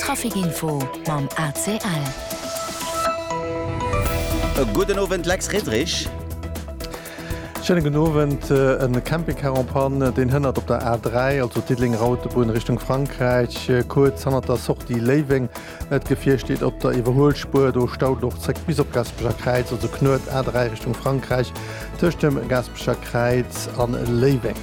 Trafic Info mam ACL. E gudden Owend Lex Riddrich. Schéine gudden Owend. E Campingcar en Panne, deen hënnert op der A3, also Diddeleng-Rautebunn Richtung Frankräich, kuerz hannert der Sortie Léiweng. D'Gefier steet op der Iwwerhuelspuer, do staut et och zréck bis op d'Gaspecher Kräiz, also Knuet, A3 Richtung Frankräich, tëscht dem Gaspecher Kräiz an Léiweng.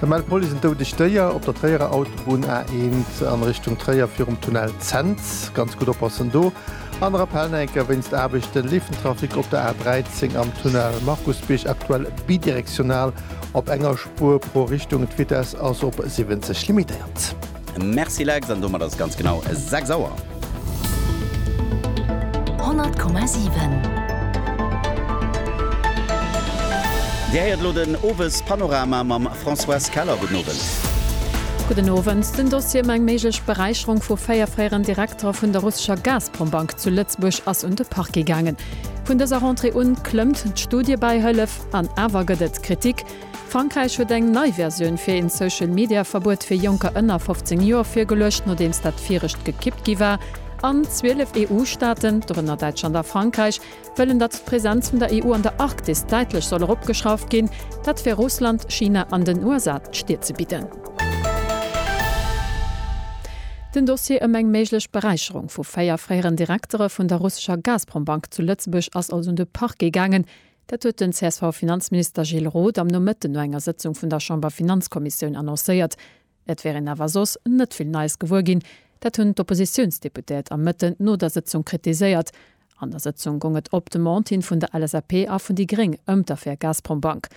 Der mellt d'Police en doudegt Déier op der Tréierer Autobunn A1 an Richtung Tréier virum Tunnel Zens. Ganz gutt oppassen do! Aner Appell, Neinker, Wéinst Aarbechten leeft den Trafic op der A13 am Tunnel Markusbierg aktuell bidirektional op enger Spuer pro Richtung. D'Vitess ass op 70 limitéiert. Merci Lex, an domat ass et ganz genau 6 Auer. 100,7. Dir héiert elo den Owespanorama mam Françoise Keller. Gudden Owend. Gudden Owend. Den Dossier ëm eng méiglech Beräicherung vu 4 fréieren Direktere vun der russescher Gazprom-Bank zu Lëtzebuerg ass un de Parquet gaangen. Vun dëser Rentrée un klëmmt d'Studiebäihëllef, an awer gëtt et Kritik. Frankräich huet eng nei Versioun fir een Social-Media-Verbuet fir Jonker ënner 15 Joer virgeluecht, nodeems dat virecht gekippt gi war. An 12 EU-Staaten, dorënner Däitschland a Frankräich, wëllen, datt d'Präsenz vun der EU an der Arktis däitlech soll eropgeschrauft ginn. Dat fir Russland, China an den USA d'Stier ze bidden. Den Dossier ëm eng méiglech Beräicherung vu véier fréieren Direktere vun der russescher Gazprom-Bank zu Lëtzebuerg ass also un de Parquet gaangen. Dat huet den CSV-Finanzminister Gilles Roth am Nomëtten no enger Sëtzung vun der Chamberfinanzkommissioun annoncéiert. Et wär een awer soss net vill Neies gewuer ginn. Dat hunn d'Oppositiounsdeputéiert am Mëtten no der Sëtzung kritiséiert. An der Sëtzung goung et op Demande hin vun der LSAP a vun déi gréng ëm d'Affär Gazprombank.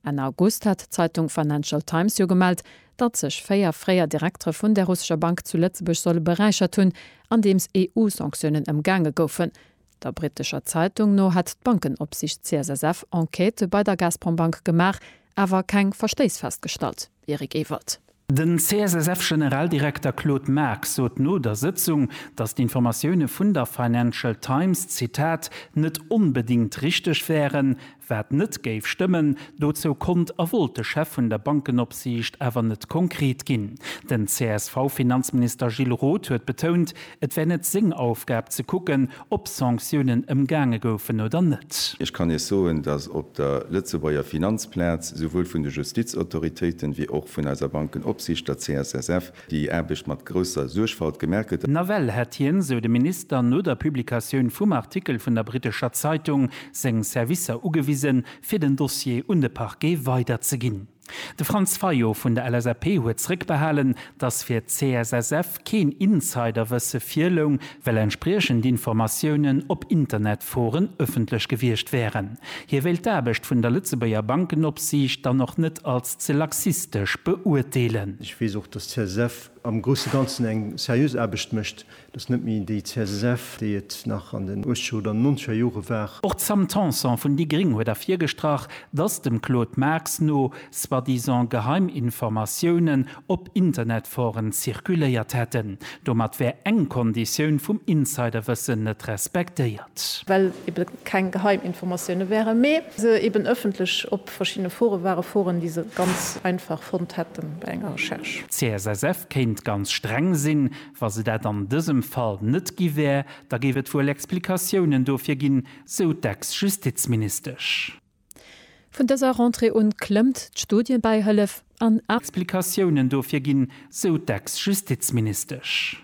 Enn August hat d'Zeitung Financial Times jo gemellt, datt sech véier fréier Direktere vun där russescher Bank zu Lëtzebuerg solle beräichert hunn, andeems EU-Sanktiounen ëmgaange goufen. Der brittescher Zeitung no hätt d'Bankenopsicht CSSF Enquêtë bei der Gazprombank gemaach, awer keng Verstéiss festgestallt. Eric Ewald. Den CSSF-Generaldirekter Claude Marx sot no der Sëtzung, datt d'Informatioune vun der Financial Times, Zitat, net onbedéngt richteg wären, Wat net géif stëmmen, dozou konnt a wollt de Chef vun der Bankenopsiicht awer net konkret ginn. Den CSV-Finanzminister Gilles Roth huet betount, et wär net seng Aufgab ze kucken, ob Sanktiounen ëmgaange goufen oder net. Ech kann Iech soen, datt op der Lëtzebuerger Finanzplaz souwuel vun de Justizautoritéiten, wéi och vun eiser Bankenopsiicht, der CSSF, Déi Aarbecht mat grousser Suergfalt gemerket. Nawell hätt hien, sou de Minister, no der Publikatioun vum Artikel vun der brittescher Zeitung seng Servicer ugewisen, fir den Dossier un de Parquet weiderzeginn. De Franz Fayot vun der LSAP huet zréckbehalen, datt fir d'CSSF keen Insiderwësse virloung, well entspriechend Informatiounen op Internetforen ëffentlech gewiescht wären. Hie wéilt d'Aarbecht vun der Lëtzebuerger Bankenopsiicht dann och net als ze laxistesch beurteelen. Ech weess och, datt d'CSSF am grousse Ganzen eng seriös Aarbecht mécht. Dat ass net méi déi CSSF, déi et nach an den Uechtzeger oder Nonzeger Jore war. Och d'Sam Tanson vun déi gréng huet ervirgestrach, datt dem Claude Marx no soi-disant geheim Informatiounen op Internetforen zirkuléiert hätten. Domat wär eng Konditioun vum Insiderwëssen net respektéiert. Well ebe keng geheim Informatioune wären, mee se eben ëffentlech op verschiddene Fore waren, Foren, déi se ganz einfach fonnt hätten bei enger Recherche. D'CSSF kéint ganz streng sinn. Wa se dat an dësem Fall net gi wär, da géif et wuel Explikatiounen dofir ginn, sou d'Ex-Justizministesch. Vun dëser Rentrée un klëmmt d'Studiebäihëllef an. Explikatiounen dofir ginn, sou d'Ex-Justizministesch.